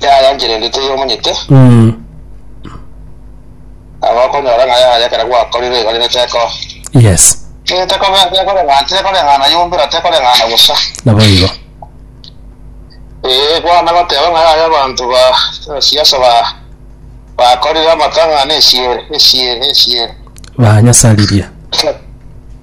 yayanchire ende teyomanyete Mm. agokonyora ng'a yaya ekero gwakorire igori ne teko Yes. Eh, tekobe- tekoreng'ana tekoreng'ana yombera tekoreng'ana bosa Naboigo. Eh, kwana goteba ng'a yaya abanto ba siasa ba bakorire amatang'ana esiere esiere esiere Banyasaririe.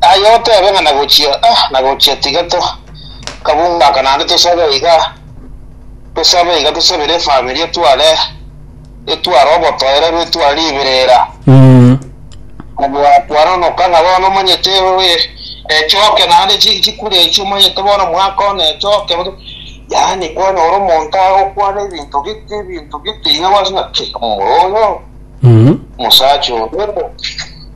Aye otebe ng'a nagochia, ah, nagochia tiga to kabungaka naende tosabe iga, tosabe iga tosabere efamiri etware etware obotoerero etware riberera. Mm. Mwakwana onoka ng'a bono omanyete oye echoke naende chi chikure echi omanyete bono mwaka one echoke bono. Yaani kwanyora omonto agokwana ebinto gete ebinto gete iga gwase ng'a ki, omoro oyo, Mm. omosacha oyo.